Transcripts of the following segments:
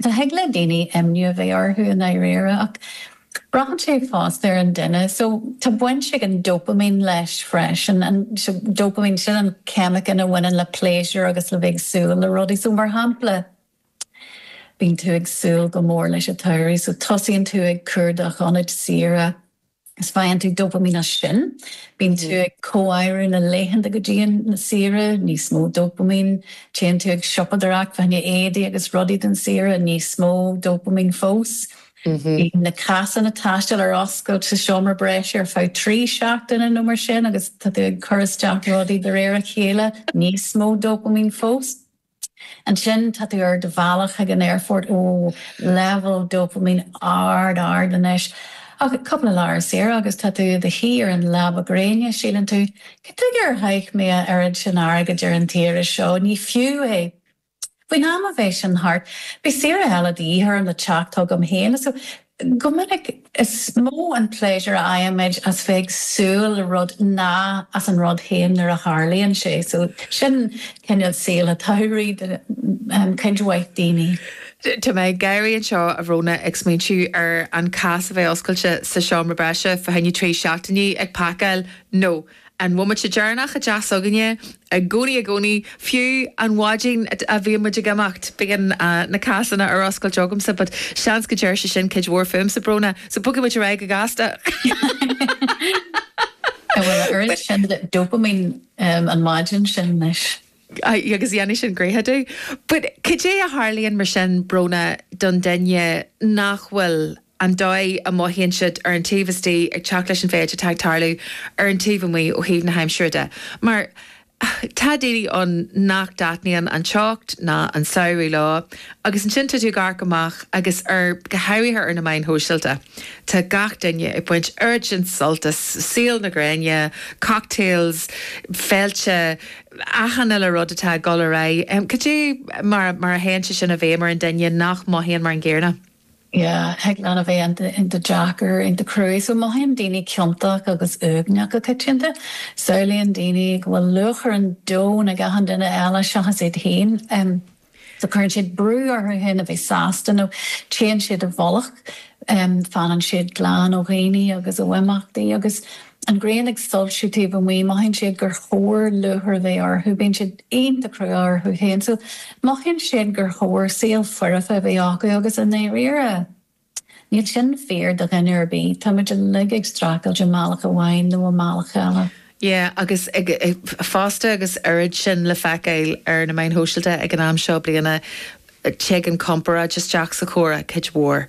Thig le daoine imniú a bheith orthu i ndáiríre ach braitheann sé fosta ar an duine so tá baint ag an dopaimín leis freisin, an dopaimín, sin an ceimiceán a bhaineann le pléisiúr agus le bheith ag súil le rudaí so mar shampla bíonn tú ag súil go mór leis an tsamhraidh so tosaíonn tú ag cuardach ionaid saoire, Is faigheann tú dopaimín as sin, bíonn tú ag comháireamh na laethanta go dtí an saoire, níos mó dopaimín, téann tú ag siopadóireacht, fá choinne éadaí agus rudaí don saoire, níos mó dopaimín fós. Bíonn na cásanna taistil ar oscailt sa seomra breis ar feadh trí seachtaine nó mar sin agus tá tú ag cur isteach rudaí de réir a chéile, níos mó dopaimín fós. Ansin tá tú ar do bhealach chuig an aerfort, ó, leibhéal dopaimín ard, ard anois, ach cúpla lá ar saoire agus tá tú i do shuí ar an leaba gréine, síleann tú, cad tuige ar chaith mé a oiread sin airgid ar an tsaoire seo, ní fiú é! Faoin am a bheidh sin thart, beidh saoire eile de dhíth orm le teacht chugam féin. Go minic, is mó an pléisiúr a fhaighimid as bheith ag súil le rud ná as an rud féin nuair a tharlaíonn sé, so sin cineál saol an tsamhraidh do cuid mhaith daoine. Tá mé ag gáirí anseo, a Bhrónagh, ag smaointiú ar an cás a bheith oscailte sa seomra breise, fá choinne trí seachtainí, ag pacáil, no. An bomaite deireanach i dteach s'againne, i gcónaí, i gcónaí, fiú an mhaidin a bhíonn muid ag imeacht, bíonn na cásanna ar oscailt agamsa, but seans go ndeir sé sin cuid mhór fúmsa, Brónagh, so bogfaidh muid ar aghaidh go gasta. Bhuel, a oiread sin dopaimín an mhaidin sin, leis. Aye, agus dhéanfaidh sin gnoithe domh. But cad é a tharlaíonn mar sin, Brónagh, don duine nach bhfuil an dóigh a mothaíonn siad ar an taobh istigh ag teacht leis an mhéid atá ag tarlú ar an taobh amuigh ó thaobh na haimsire de? Mar tá daoine ann nach dtaitníonn an teocht ná an samhradh leo agus ansin tá tú ag amharc amach agus ar, go háirithe ar na meáin shóisialta, tá gach duine ag baint oiread sin sult as saol na gréine, cocktails, féilte, achan uile rud atá ag dul ar aghaidh, cad é mar a théann sé sin i bhfeidhm ar an duine nach mothaíonn mar an gcéanna? Yeah, thig leat a bheith in do Jack or in do Cruaidh so mothaíonn daoine ciontach agus uaigneach go coitianta. Samhlaíonn daoine go bhfuil lúcháir an domhain ar achan duine eile seachas iad féin. So cuireann siad brú orthu fhéin a bheith sásta nó téann siad i bhfolach, fanann siad glan ó dhaoine agus ó imeachtaí. Agus an ghrian ag soilsiú taobh amuigh, mothaíonn siad gur chóir lúcháir a bheith orthu, bíonn siad iontach crua orthu fhéin, so mothaíonn siad gur chóir saol foirfe a bheith acu agus i ndáiríre, Níl sin fíor do dhuine ar bith, tá muid uilig ag streachailt i mbealach amháin nó i mbealach eile. Yeah agus fosta agus oiread sin le feiceáil ar na meáin shóisialta ag an am seo bliana, tig an chomparáid isteach sa chomhrá, cuid mhór.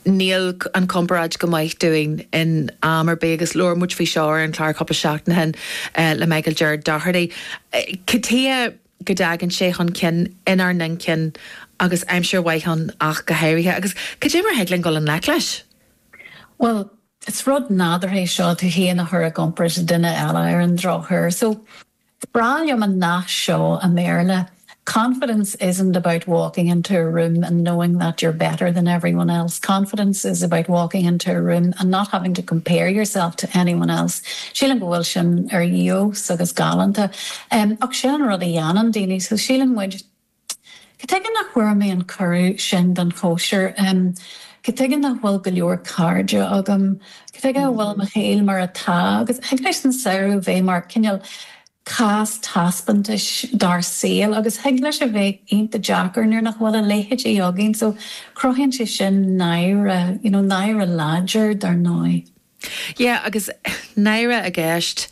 Níl an chomparáid go maith dúinn in am ar bith agus labhair muid faoi seo ar an chlár cúpla seachtain ó shin le Michael Gerard Doherty. Ctr. go dtagann sé chun cinn inár n-inchinn agus aimsir mhaith ann ach go háirithe. Agus cad é mar a thig linn dul i ngleic leis? Bhuel, is rud nádúrtha é seo, tú féin a chur i gcomparáid le duine eile, ar an drochuair. So, is breá liom an nath seo i mBéarla, Confidence isn't about walking into a room and knowing that you're better than everyone else, confidence is about walking into a room and not having to compare yourself to anyone else. Sílim go bhfuil sin ar fheabhas agus galánta. Em, ach sin an rud a dhéanann daoine, so síleann muid, cad chuige nach bhfuair mé an cuireadh sin don chóisir, em, cad chuige nach bhfuil go leor cairde agam, cad chuige a bhfuil mo shaol mar atá agus thig leis an samhradh bheith mar, cineál, cás taispeántais dár saol agus thig leis a bheith iontach deacair nuair nach bhfuil a leithéidí againn so cruthaíonn sé sin náire, you know, náire láidir, dar ndóigh. Yeah, agus náire i gceist,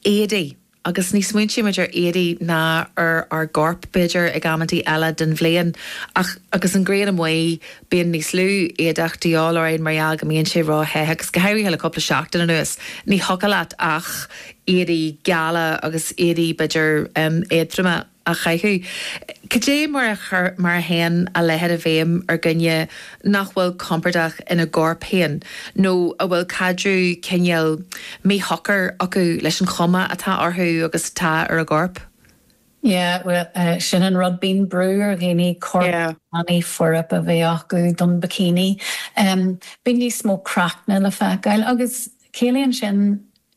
éadaí. Agus ní smaointímid ar éadaí ná ar ár gcorp, b'fhéidir, ag amanntaí eile den bhliain, ach agus an ghrian amuigh, bíonn níos lú éadaí de dhíth orainn mar gheall go mbíonn sé róthe, agus go háirithe le cúpla seachtain anuas, ní thiocfadh leat ach éadaí geala agus éadaí, b'fhéidir, éadtroma. a chaitheamh. Cad é mar a théann a leithéid i bhfeidhm ar dhuine nach bhfuil compordach ina gcorp féin nó a bhfuil caidreamh cineál míshocair acu leis an chuma atá orthu agus atá ar a gcorp? Yeah, bhuel, sin an rud, bíonn brú ar dhaoine corp tanaí foirfe a bheith acu don bikini. Bíonn níos mó craicne le feiceáil agus ciallaíonn sin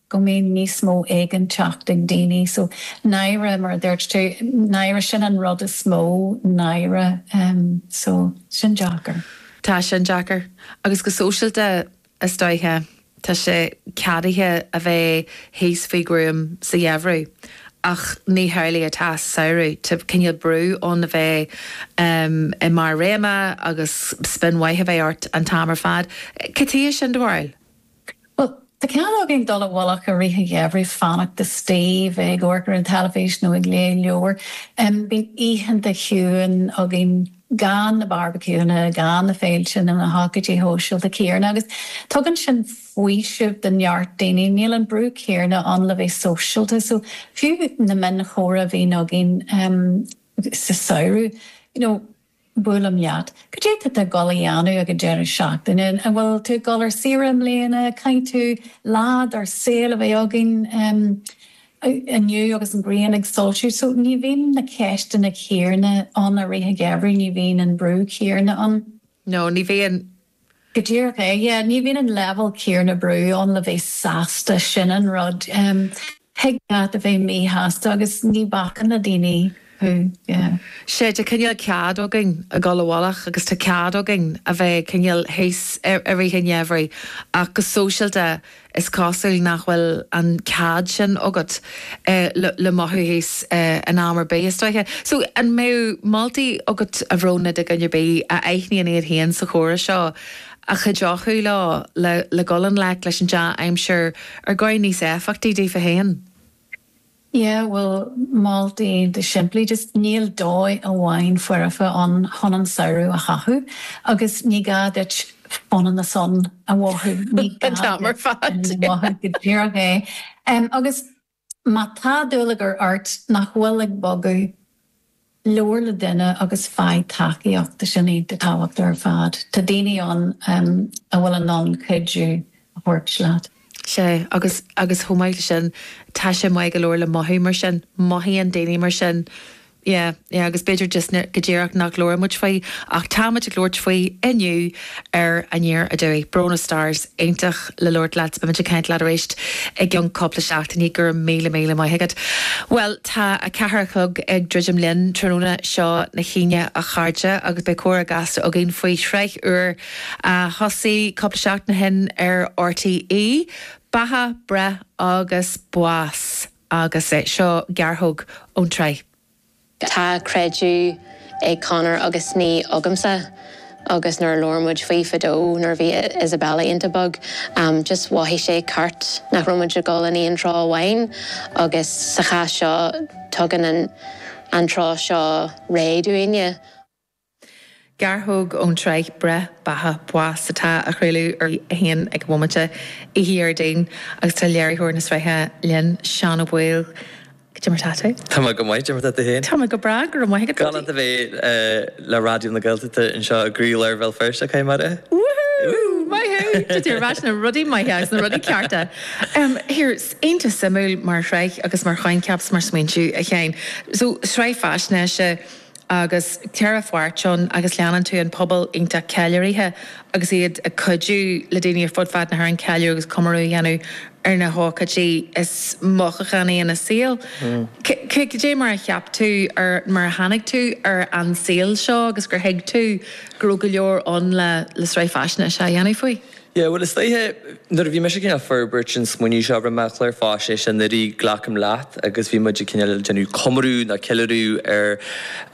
go mbíonn níos mó éiginnteacht ag daoine so náire mar a dúirt tú náire sin an rud is mó náire so sin deacair. Tá sin deacair agus go sóisialta is dóiche tá sé ceadaithe a bheith thíos faoi ghruaim sa gheimhreadh ach ní hamhlaidh atá sa samhradh tá cineál brú ann a bheith i mbarr do réime agus spion maith a bheith ort an t-am ar fad cad é do bharúil? Bhuel, tá cead againn dul i bhfolach i rith an gheimhridh, fanacht taobh istigh, ag amharc ar an teilifís nó ag léamh leabhair. Bíonn oícheanta chiúin againn gan na barbaiciúnna, gan na féilte nó na hócáidí shóisialta céanna agus tugann sin faoiseamh do neart daoine, níl an brú céanna ann le bheith sóisialta. So, fiú na mionchomhrá a bhíonn againn sa samhradh, you know, Buailim leat. Cad é tá tú ag dul a dhéanamh ag an deireadh seachtaine? An bhfuil tú ag dul ar saoire i mbliana? Caithfidh tú lá dár saol a bheith againn inniu agus an ghrian ag soilsiú. So, ní bhíonn na ceisteanna céanna ann i rith an gheimhridh, ní bhíonn an brú céanna ann. No, ní bhíonn. Go díreach é. Yeah, ní bhíonn an leibhéal céarna brú ann le bheith sásta, sin an rud. Thig linn a bheith míshásta agus ní bhacann na daoine leat, yeah. Sea, tá cineál cead againn a dhul i bhfolach agus tá cead againn a bheith cineál thíos i rith an gheimhridh ach go sóisialta Is cosúil nach bhfuil an cead sin agat le mothú thíos in am ar bith, is dócha. So, an mbeadh moltaí agat, a Bhróna, do dhuine ar bith a aithníonn iad féin sa chomhrá seo a chuideochadh leo le dul i ngleic leis an dea-aimsir ar dhóigh níos éifeachtaí daofa féin? Yeah, bhuel, moltaí go simplí, just níl dóigh amháin foirfe ann chun an samhradh a chaitheamh agus ní gá duit fun in the sun a mhothú, an t-am ar fad, go díreach é. Agus má tá dúlagar ort nach bhfuil ag bogadh, Labhair le duine agus faigh tacaíocht, sin é is tábhachtaí ar fad. Tá daoine ann a bhfuil in ann cuidiú a thabhairt duit. Sea, agus, agus chomh maith leis sin, tá sé maith go leor le mothú mar sin, mothaíonn daoine mar sin, yeah, yeah, agus b'fhéidir just go díreach nach labhraímid faoi, ach táimid ag labhairt faoi inniu, ar An Deireadh Seachtaine. Bróna Starrs iontach le labhairt leat, beimid ag caint leat arís i gceann cúpla seachtainí, go raibh míle míle maith agat. Bhuel, tá a ceathair a chlog ag druidim linn, tráthnóna seo na hAoine a chairde, agus beidh comhrá gasta againn faoi shraith úr a thosaigh cúpla seachtain ó shin ar RTÉ, Beatha, Breith agus Bás, agus seo gearrthóg ón tsraith. Tá creideamh ag Conor agus ní agamsa agus nuair a labhair muid faoi fadó nuair a bhí Isabella iontach beag, just mhothaigh sé ceart nach raibh muid ag dul in aon treo amháin agus sa chás seo tugann an treo seo réiteach dúinne. Gearrthóg ón tsraith 'Breith, Beatha, Bás' atá á chraoladh ar RTÉ1 ag an bhomaite, oíche Dhéardaoin, agus tá léiritheoir na sraithe linn, Seán Ó Baoill. Cad é mar 'tá tú? Tá mé go maith, cad é mar 'tá tú féin? Tá mé go breá, go raibh maith agat. Galánta a bheith le Raidió na Gaeltachta anseo i gcroílár Bhéal Feirste, Conamara. Wúhú! Maith thú! Tá tú ar ais sna rudaí maithe agus na rudaí cearta. Here, iontach suimiúil mar shraith agus mar choincheap 's mar smaointiú, a Sheáin. So, sraith faisnéise. agus ceithre pháirt ann agus leanann tú an pobal iontach ceiliúraithe agus iad ag cuidiú le daoine ar fud fad na hÉireann ceiliúradh agus comóradh a dhéanamh ar na hócáidí is mothúchánaí ina saol. Cé cad é mar a cheap tú ar mar a tháinig tú ar an saol seo agus gur thuig tú go raibh go leor ann le sraith faisnéise a dhéanamh faoi? Yeah, bhuel is dóiche nuair a bhí mise ag cineál forbairt an smaoineamh seo, rinne mé an clár faisnéise anuraidh, glacaim leat, agus bhí muid ag cineál déanamh comóradh nó ceiliúradh ar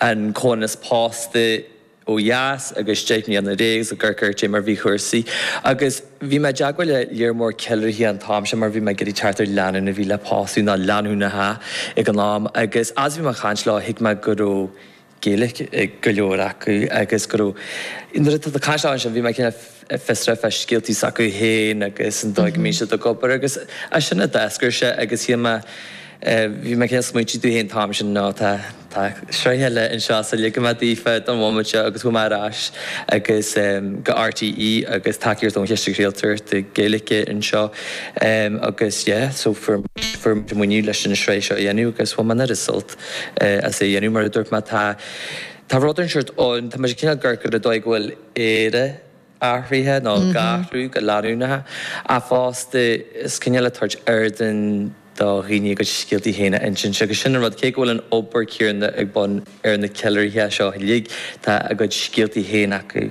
an comhionannas pósta ó dheas agus deich mbliana ina dhiaidh agus ag amharc ar cad é mar a bhí cúrsaí. Agus bhí mé i dteagmháil le lear mór ceiliúraithe an t-am sin mar bhí mé ag iarraidh teacht ar lánúin a bhí le pósadh, nó lánúineacha ag an am. Agus as a bhí mé ag caint leo, thuig mé go raibh. Gaeilge ag go leor acu agus go raibh, nuair atá na caisleáin ansin, bhí mé cineál fiosrach fá scéaltaí s'acu féin agus an dóigh a mbíonn siad ag obair agus as sin a d'eascair sé agus shíl mé, bhí mé cineál smaointiú dom féin an t-am sin, no, tá, tá sraith eile anseo so ligfidh mé daofa don mhóimint seo agus chuaigh mé ar ais agus go RTÉ agus tacaíocht ón Chiste Craoltóireachta Gaeilge anseo agus yeah, so fuair muid an maoiniú leis an sraith seo a dhéanamh agus bhain mé an oiread sult as é a dhéanamh, mar a dúirt mé. Tá, tá rud ar an seort ann, tá, muid cineál ag amharc ar an dóigh go bhfuil Éire athraithe, nó ag athrú go leanúnach, ach fosta, is cineál ag tabhairt ardán do dhaoine a gcuid scéaltaí féin a insint. Agus sin an rud, cé go bhfuil an obair céanna ag bun ar na ceiliúraithe seo uilig, tá a gcuid scéaltaí féin acu.